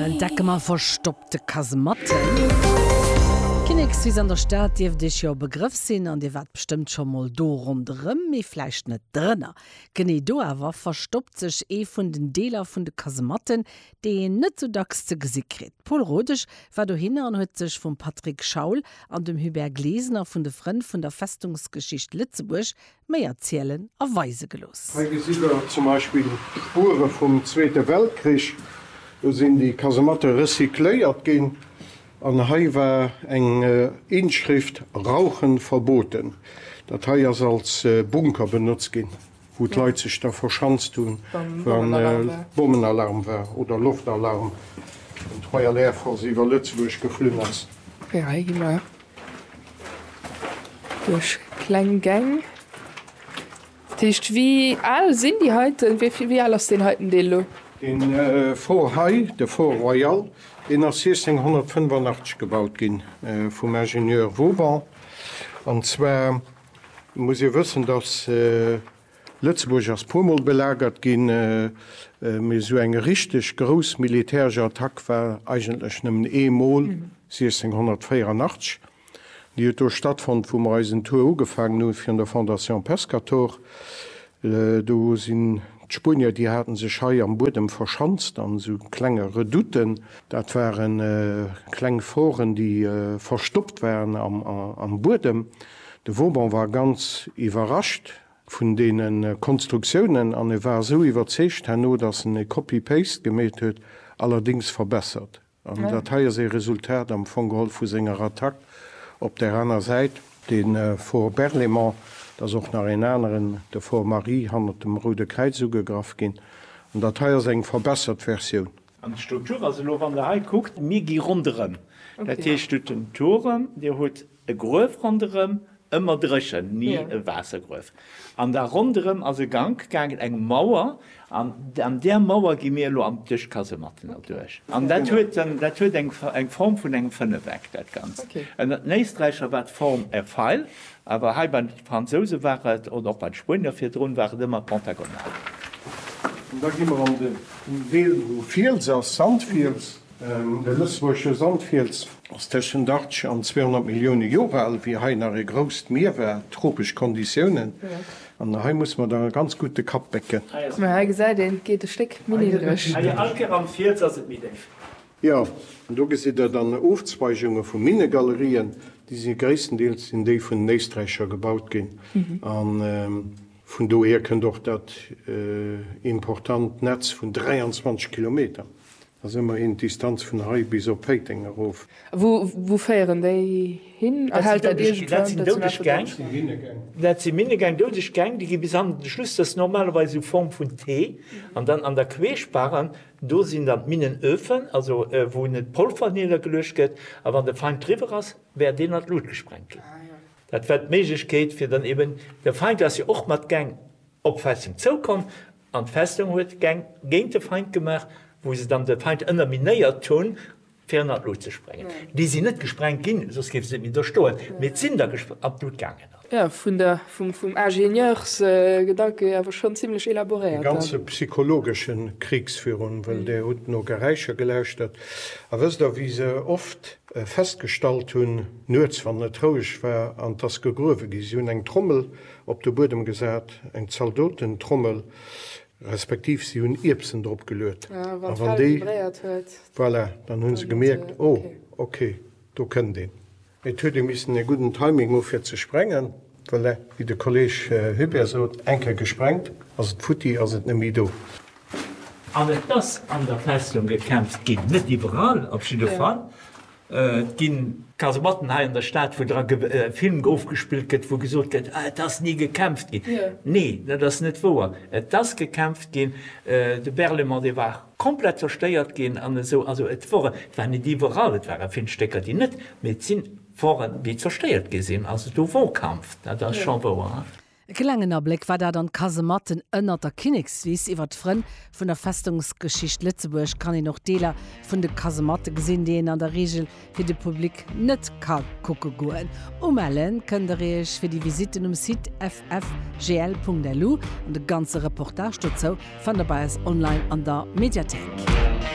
Entdecke mer verstoppte Kasematten. D'Kinnekswiss an der Stad dierft Iech jo e Begrëff sinn an Dir waart bestëmmt scho mol do ronderëm, mee vläicht net drënner. Genee do awer verstoppt sech ee vun den Deeler vun de Kasematten, déi een net sou dacks ze gesi kritt. D'Paule Rodesch war dohinner an huet sech vum Patrick Schaul an dem Hubert Glesener vun de Frënn vun der Festungsgeschicht Lëtzebuerg méi erzielen a weise gelooss. Hei gesitt der zum Beispill d'Spuere vum Zweete Weltkrich. Do sinn déi Kasematte recycléiert ginn an hei war eng Inschrift Rauchen verboten. Dat hei ass als Bunker benotzt ginn, wou d'Leit sech da verschanzt hunn, wa Bommenalarm war oder Loftalarm, wann d'Royal Air Force iwwer Lëtzebuerg geflunn ass. Duerch kleng Gäng. Dat heescht, wéi al sinn déi heiten, wéi vill, wéi al ass deen heiten Deel elo? Deen Fort hei, de Fort Royal, deen ass 1685 gebaut gi vum Ingenieur Vauban. An zwar muss ee wëssen, datt. Lëtzebuerg ass puer mol belagert ginn, mee esou eng richteg grouss militäresch Attack war eigentlech nëmmen ee mol, 1684. Déi huet do stattfonnt, wou mer eisen Tour ugefaangen hu virun der Fondation Pescator. Do sinn d'Spuenier, déi hate sech hei am Buedem verschanzt an esou klenge Redouten. Dat ware kleng Foren, déi verstoppt waren am Buedem. De Vauban war ganz iwwerrascht vun deene Konstruktiounen an e war esou iwwerzeegt herno, datt en e Copy-Paste gemeet huet, allerdéngs verbessert. An dat hei ass ee Resultat am Fong geholl vu senger Attack op där aner Säit. De Fort Berlaymont, et ass och nach een aneren, de Fort Marie, hannert dem Roude Kräiz ugegraff ginn. An dat hei ass eng verbessert Versioun. An d'Struktur, also elo wann Der hei kuckt, mir gi ronderëm, dat heescht do den Turem, Dir hutt e Gruef ronderëm, ëmmer dréchen, ni e Waassergruef. An da ronderëm ass e Gank gaangen, eng Mauer, an an där Mauer gi mir elo an, duerch d'Kasematten erduerch. An dat huet en, dat huet eng Form vun engem Fënnefeck, dat Ganzt. Ënnert den Éisträicher war d'Form e Feil, Awer hei bei de Fransouse war et, oder och bei de Spuenier virdrun, war et ëmmer pentagonal. An da gi mer an den Deel, wou Fiels ass, Sandfiels. De lëtzebuergesche Sandfiels ass tëschent 80 an 200 Millioune Jore al, wéi hei nach e grousst Mier war, tropesch Konditiounen. An hei muss mer da ganz gutt de Kapp bécken. Mä hei gesäit een, et geet e Stéck méi niddreg. Hei all Kéier am Fiels ass et méi déif. Jo, do gesitt der dann Ofzweigunge vu Minnegalerien, déi si gréisstendeels sinn déi vun den Éisträicher gebaut ginn. A vun dohier kënnt och dat important Netz vun 23 Kilometer, dat ass ëmmerhin d'Distanz vun hei bis op Péiteng erof. Wou féieren déi hin? Erhält dat iergendwou eng doudeg Gäng? Dat si Minnegäng. Dat si Minnegäng, doudeg Gäng, déi gi bis an de Schluss, dat ass normalerweis u Form vun T, an dann an der Queesch, Barren, Do sinn dann d'Minnenöfen, also wou net d'Polver niergeluecht gëtt, a wann de Feind driwwer ass, wäert deen an d'Lut gesprengt ginn. Dat war d'Méiglechkeet, fir dann eben, de Feind ass jo och mat Geng op d'Festung zoukomm an d'Festung huet Geng géint de Feind gemaach, wou se dann de Feind ënnerminéiert hunn fir ënnert d'Lut ze sprengen. Déi sinn net gesprengt ginn, soss géif se net méi do stoen, mee et sinn der an d'Lut gaangen. Jo, vun der, vum Ingenieursgedanke awer schonn zimlech elaboréiert. E ganze psychologesche Krigsvirun, well Der hutt no Geräischer gelauschtert. A wësst Der, wéi se oft festgestallt hunn, nuets, wann et roueg war an et ass gegruewe ginn, si hunn eng Trommel op de Buedem gesat, eng Zaldotentrommel, Respektiv si hunn Ierbsen drop geluet. A wann déi vibréiert huet. Voilà, dann hu se gemierkt, oh, ok, do kënnt een. Et huet ee missen e gudden Timing hu fir ze sprengen. Voilà, wéi de Kolleeg Hubert sot, eng Kéier gesprengt, ass et futti, ass et net méi do. An et ass an der Festung gekämpft ginn, net iwwerall, op jidde Fall. Et ginn. Kasematten hei an der Stad, wou dra Film ofgespillt gëtt, wou gesot gëtt, et ass ni gekämpft ginn. Nee, dat ass net wouer. Et ass gekämpft ginn. De Berlaymont, dee war komplett zerstéiert ginn an esou. Also et wor, et war net iwwerall, et ware vill Stécker, déi net, mee et sinn, woren, déi zerstéiert gi sinn. Also do wor Kampf, dat ass scho wouer. E klengen Abléck war dat an d'Kasematten ënnert der Kinnekswiss. Iwwer d'Frënn vun der Festungsgeschicht Lëtzebuerg kann een och Deeler vun de Kasematte gesinn, déi een an der Reegel fir de Public net ka kucke goen. Umelle kënnt der iech fir déi Visitten um Site ffgl.lu an de ganze Reportage dozou fannt der bei eis online an der Mediathéik.